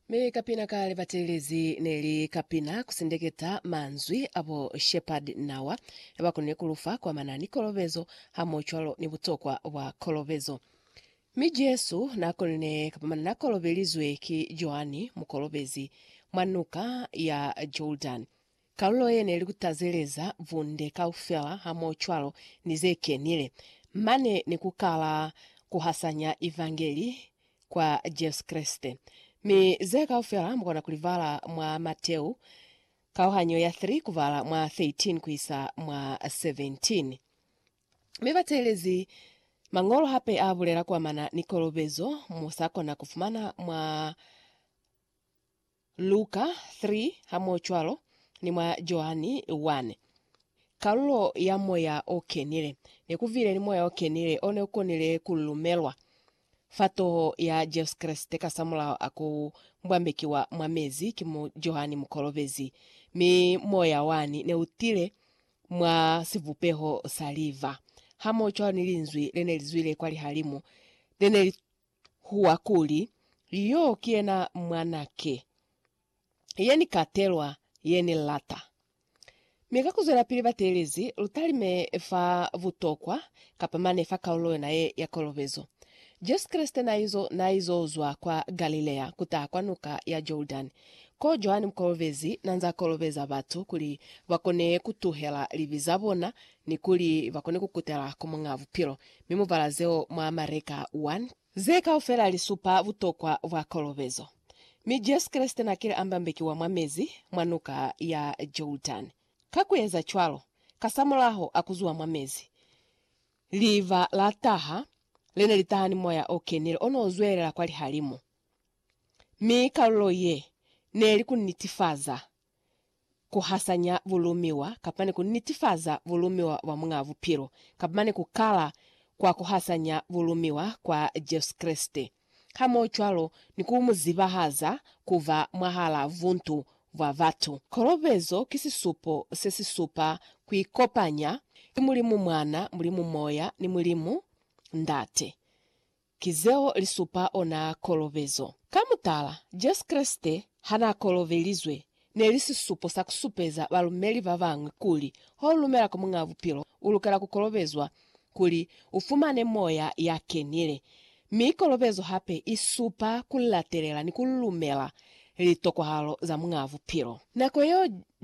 Mi kapina ka libatelezi ne li kapina ku sindeketa manzwi a bo Shepherd Nawa ya ba konile ku lufa kwa mana ni kolobezo hamohocwalo ni butokwa bwa kolobezo. Mi Jesu na konile kapamana na kolobelizwe ki Joani Mukolobezi mwa Nuka ya Jordan. Kalulo ye ne li ku tazeleza bunde kaufela hamohocwalo ni ze kenile, mane ni ku kala ku hasanya Evangeli kwa Jesu Kreste. Mi ze kaufela mu kona ku li bala mwa Mateu, kauhanyo ya 3 ku bala mwa 13 ku isa mwa 17. Mi bateelezi Mañolo hape a bulela ku amana ni kolobezo mu sa kona ku fumana mwa. Luka 3, hamoocwalo ni mwa Joani 1. Kalulo ya moya o kenile. Ne ku vile ni moya o kenile o ne u konile ku lumelwa fa toho ya Jesu Kreste kasamulaho a ku mbwambekiwa mwa mezi ki mu Joani Mukolobezi, mi moya wani ne u tile mwa sivupeho sa liva, hamoocwalo ni Linzwi le ne li zwile kwa lihalimu, le ne li huwa kuli, Yo ki yena Mwana ke, ye Ni katelwa, ye Ni lata. Mi ka kuzwelapili bateelezi, lu talime fa butokwa, kapa mane fa kaulo yona ye ya kolobezo. Jesu Kreste naizo, naizo zwa kwa Galilea kutaha kwa Nuka ya Jordani, ko Johani Mukolobezi nanza kolobeza batu kuli bakone kutuhela libi zabona ni kuli ba kone ku kutela ku Muñ'a Bupilo, mi mu bala zeo mwa Mareka 1. Ze kaufela li supa butokwa bwa kolobezo, mi Jesu Kreste n'a kile a mbambekiwa mwa mezi mwa Nuka ya Jordani. Ka ku eza cwalo, kasamulaho a ku zuha mwa mezi, liva la taha, le ne li taha ni moya o kenile o n'o zwelela kwa lihalimu, mi kalulo ye ne li ku nitifaza kuhasanya bulumiwa kapani kunitifaza bulumiwa bwa Muñaa Bupilo, kapani kukala kwa kuhasanya bulumiwa kwa Jesu Kreste, hamohocwalo ni ku mu zibahaza kuba mwahalaa buntu bwa batu. Kolobezo ki sisupo se si supa kuikopanya ki Mulimu Mwana, Mulimu Moya, ni Mulimu Ndate. Ki zeo li supa ona kolobezo. Ka mutala, Jesu Kreste ha n'a kolobelizwe, ne li sisupo sa ku supeza balumeli ba bañwi kuli ha u lumela ku Muñ'a Bupilo, u lukela ku kolobezwa kuli u fumane moya ya kenile. Mi kolobezo hape i supa ku latelela ni ku lumela litokwahalo za Muñ'a Bupilo. Nako yeo